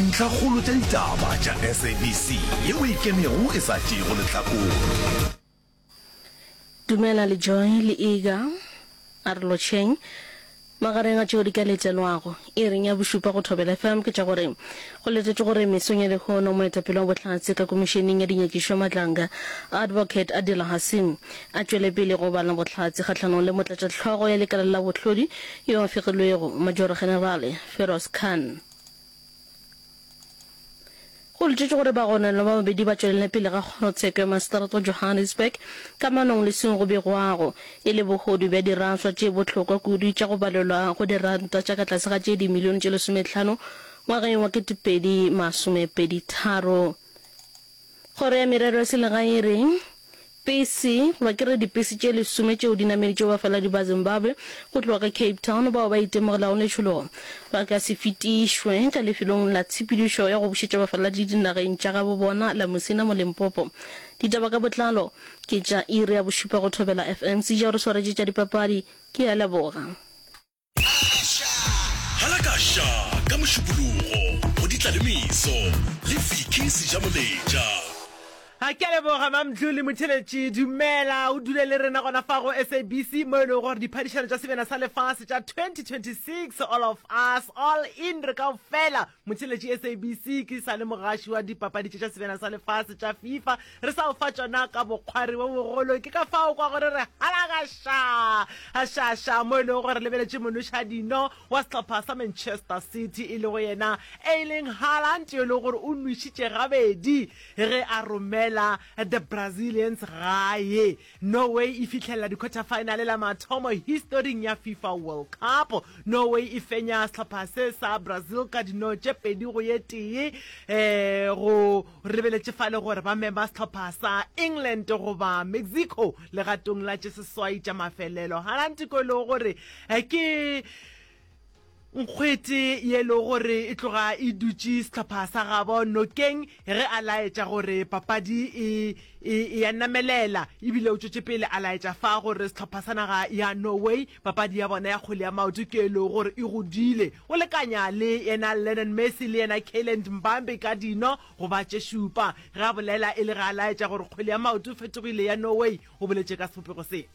Dintlhakgolo tša ditaba tša SABC yeo e kenego e sa tšeego lehlakore. Dumela le Joy le Iga. A re lotšheng. Magareng a tšeo di ka letelwago iring ya bošupa go Thobela FM ke tša gore go letetšwe gore mesong ya lehono moetapele wa Bohlatse ka Komišeneng ya Dinyakišo Madlanga, Advocate Adila Hassim, a tšwele pele go bala bohlatse kgahlanong le motlatšahlogo ya lekala la bohlodi yo a fegilwego, Majoro-Generale Feroz Khan. Go letšetšwe gore bagononelwa ba babedi ba tšwelele pele ga kgorotsheko ya maseteratwa Johannesburg ka manong leswing go begwago e le bogodu bja diraswa tše bohlokwa kudu tša go balelwa go diranta tša ka tlase ga tše dimilione tše lesometlhano ngwageng wa 2023. Kgoro ya Merero ya Selegae e re, Pesi, goba ke re dipesi tše lesome tšeo di nameditšego bafaladi ba Zimbabwe go tloga ka Cape Town bao ba itemogelago letšhologo, ba ka se fetišwe ka lefelong la tshepedišo ya go bušetša bafaladi dinageng tša gabo bona la Musina mo Limpopo. Ditaba ka botlalo ke tša iri ya bošupa go Thobela FM. Sija o re swaretše tša dipapadi. Ke a leboga. Hala ka ša ka mošupologo go ditla le meso le Vicky Sejamoletša. A ke a leboga Mam'Dlu le motheletši. Dumela o dule le rena gona fa go SABC mo e lego gore diphadišano tša sebjana sa lefase tša 2026 All of Us, All In, re kaofela, Motheletši SABC ke sa le mogaši wa dipapadi tše tša sebjana sa lefase tša FIFA re sa o fa tšona ka bokgwari bo bogolo ke ka fao kwa gore re halagaša gašaša mo e lego gore lebeletše monoša dino wa sehlopha sa Manchester City e lego yena Erling Haaland yo e lego gore o nwešitše gabedi ge a romela the Brazilians gae Norway e fihlelela dikhwathafaenale la mathomo historing ya Fifa World Cup. Norway e fenya sehlopha se sa Brazil ka dino tše pedi go ye tee. E go rebeletše fa le gore ba mema sehlopha sa England goba Mexico legatong la tše seswai tša mafelelo. Harantiko e lego gore ke Nkgwete ye e lego gore e tloga e dutše sehlopha sa gabo nokeng ge a laetša gore papadi e e e ya namelela ebile o tšwetše pele a laetša fa gore sehlopha sa naga ya Norway papadi ya bona ya kgwele ya maoto ke e lego gore e godile o lekanya le yena Lionel Messi le yena Kylian Mbappe ka dino go ba tše šupa ge a bolela e le ge a laetša gore kgwele ya maoto e fetogile ya Norway o boletše ka sebopego se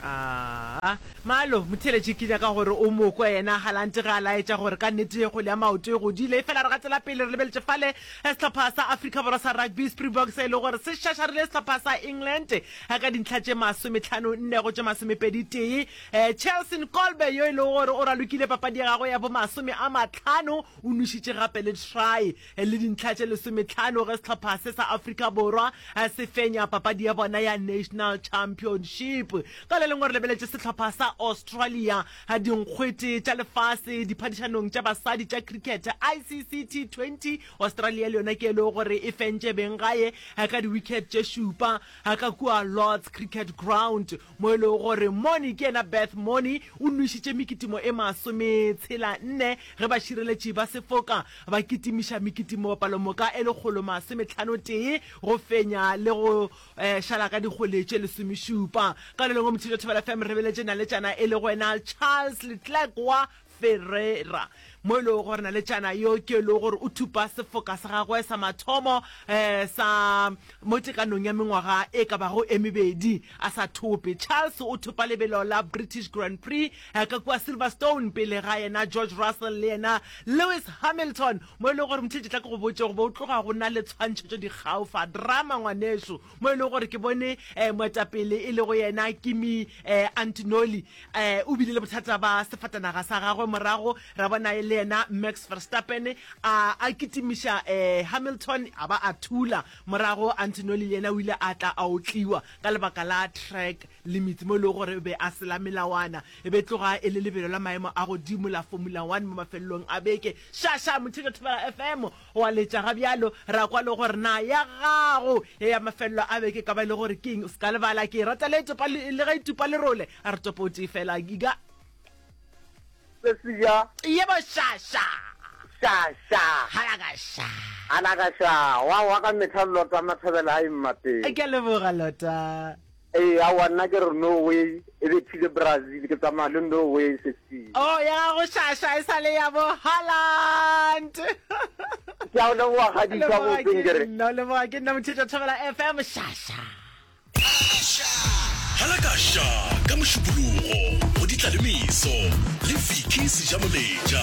Aa, Malo, motheeletši ke nyaka gore o mo kwe yena. Galante ge a laetša gore ka nnete kgole ya maoto e godile. Efela re gatela pele re lebeletše fale sehlopha sa Afrika Borwa sa rugby, Springboks, se e lego gore se šašarile sehlopha sa England ka dintlha tše masometlhano nne go tše masomepedi tee. Cheslin Kolbe yo e lego gore o ralokile papadi ya gagwe ya bo masome a matlhano o nwešitše gape le try. le dintlha tše lesometlhano ge sehlopha se sa Afrika Borwa se fenya papadi ya bona ya National Championship. Ka le lengwe re lebeletše sehlopha sa Australia, dinkgwete tša lefase diphadišanong tša basadi tša cricket ICC T20. Australia le yona ke e lego gore e fentše beng gae ka diwicket tše šupa ka kua Lord's Cricket Ground. mo e lego gore Moni ke yena Beth Moni o nwešitše mekitimo e masometshela-nne ge bašireletši ba sefoka ba kitimiša mekitimo palomoka e lekgolo masometlhano-tee go fenya le go šala ka dikgole tše lesomešupa. Karolong o mothetša Thobela FM re beletše naletšana e lego yena Charles Letlack wa Ferreira, mo e lego gore naletšana yo ke yo e lego gore o thupa sefoka sa gagwe sa mathomo sa mo tekanong ya mengwaga e ka bago e mebedi a sa thope. Charles o thopa lebelo la British Grand Prix ka kua Silverstone pele ga yena George Russell le yena Lewis Hamilton, mo e lego gore mthletše tla ke go botše goba o tloga go na le tshwantšhetšo dikgaofa drama ngwanešu mo e lego gore ke bone um moetapele e lego yena kimi um eh, antinoli um eh, o bile le bothata ba sefatanaga sa gagwe morago ra bona le yena max verstappen a a kitimiša um hamilton a ba a thula morago antinoli le yena o ile a tla a otliwa ka lebaka la track limits mo e lego gore o be a sela melawana e be tloga e le lebelo la maemo a godimo la formula one mo mafelelong a beke shasha mothekethobela fm O a letša ga bjalo, ra kwa le gore, Na ya gago ye ya mafelelo a beke e ka ba e le gore ke eng? O se ka lebala, ke e rata le topa, le ge e tupa lerole. A re topo o tee fela, e ka. Se se ja. Ye bo sha sha. Sha sha. Hala ka sha. Hala ka sha. Wa wa ka mehla Lota Mathobela a eng mapeng. Ke a leboga Lota. Ee, aowa, nna ke re no way, e be phile Brazil, ke tsamaya le no way sesi. Oh, ya gago shasha e sa le ya bo Haaland. Ke a o leboga kgadi ka go tseng ke re. No leboga ke nna mothetša thobela FM shasha. Hala ka sha ka mošupologo go ditla le meso le Vicky Sejamoleja.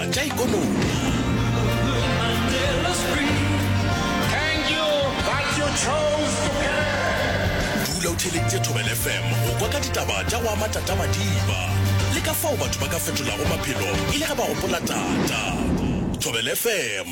tša ikonomidula o theeleditše thobel fm go kwa ka ditaba tša go ama tatamadiba le ka fao batho ba ka fetolago maphelo e le ge ba gopola tata thobel fm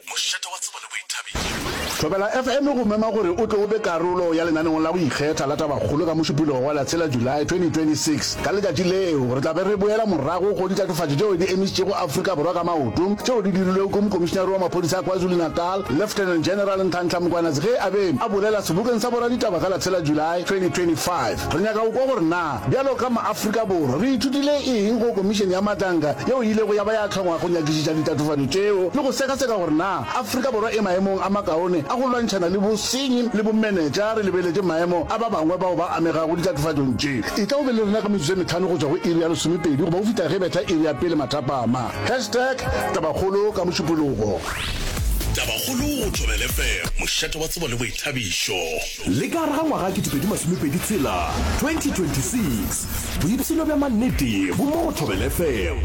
Mošate wa Tsebo le Boithabišo. Thobela FM e go mema gore o tle o be karolo ya lenaneong la go ikgetha la Tabakgolo ka Mošupologo wa Latshela, July, 2026. Ka letšatši leo re tla be re boela morago go ditatofatšo tšeo di emišitšego Afrika Borwa ka maoto tšeo di dirilwego ke Mokomišinare wa Maphodisa a KwaZulu-Natal, Lieutenant General Nhlanhla Mkwanatsi ge a be a bolela sebokeng sa boraditaba ka Latshela, July, 2025. Re nyaka go kwa gore na Bjalo ka maAfrika Borwa, re ithutile eng go Komišene ya Matlanka yeo e ilego ya ba ya hlongwa go nyakišiša ditatofatšo tšeo le go sekaseka gore na Afrika Borwa e maemong a makaone a go lwantšhana le bosenyi le bomenetša re lebeletše maemo a ba bangwe bao ba amegago ditatofatšong tše? Etla o be le rena ka metsotso e metlhano go tšwa go iri ya lesomepedi goba go fihla ge e betha iri ya pele mathapama. Hashtag Tabakgolo ka Mošupologo. Tabakgolo go Thobele FM, mošate wa tsebo le boithabišo. Le ka gare ga ngwaga 2026, 2026, boipshino bja mannete bo mo go Thobela FM.